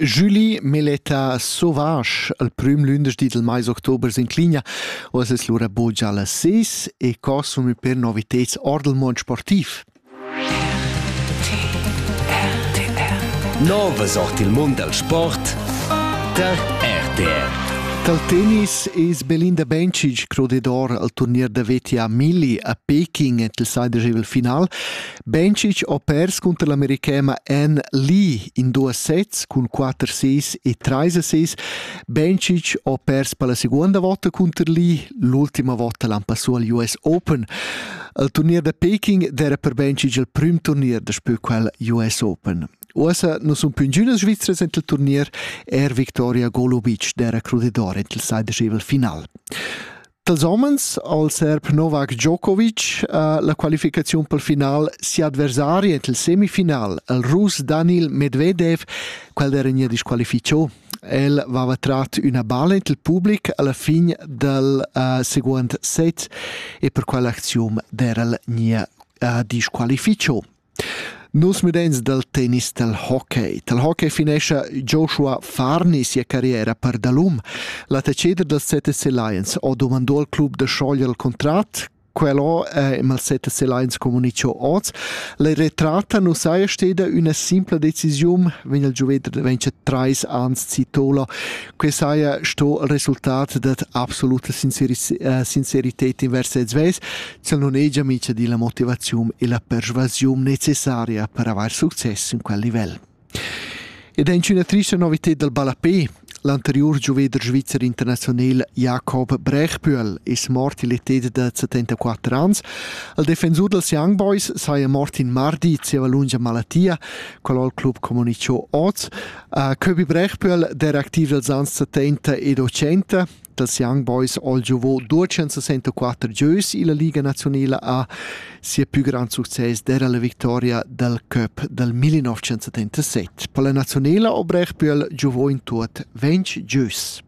Julie Meletta Sauvage al prüm lündeschdi dal mais october s'incligna uoss es lura buca las seis e consum per noviteds or dal mond sportiv. Nova sort il mund dal sport der RTR. Dal tennis es Belinda Bencic crodedor al turnier da veti a Milli a Peking ent il saidegevel final Bencic ho pers cunter l'americhema Anne Lee in duos sets cun quatter assis e trais assis. Bencic ho pers per la seguonda vota cunter Lee, l'ultima vota l'han passù al US Open. Il turnier da Peking d'era per Bencic il prüm turnier da spö quel US Open. Uossa nu sun più ingünas Svizras ent il turnier, er Victoria Golubic d'era crudidor ent il sai dschevel final. Dals homens al serb Novak Djokovic ha la qualificaziun pel final sia adversari ent il semifinal, il Rus Danil Medvedev, quel era nia disqualifichò. El vava trat üna balla ent il public alla fin dal uh, seguond set e per quell'acziun derel nia uh, disqualifichò. Nus mudeins dal tennis dal hockey. Dal hockey finescha Joshua Farni sia carriera per dalum. L'attacheder dals ZSC Lions ha dumandò al club da schoglier il contrat. Quello è il ZSC Lions comunicio oz. La retratta non saja steda una simpla decisione, vegn il giuvedre vence trais ans Citola. Que saja sto il resultat dat absoluta sincerità eh, in vers sez. Sel non hegia mica di la motivaziun e la persuasiun necessaria per avair success in quel livel. Ed è in una triste novità dal ballapé. L'anterior gioveder svizzer internazional Jakob Brechbühl è mort l'età da 74 anni. Il difensor dels Young Boys saja mort in mardi zieva lunga malattia, qual il club comunicò oz. Uh, Köbi Brechbühl, der aktiv dels anni 70 e 80, dals Young Boys all giovò 264 gieus illa Liga naziunala a sia pü grand success d'eira la victoria dal cup dal 1977. Per la naziunala obrech pü el giovò in tuot ventg gieus.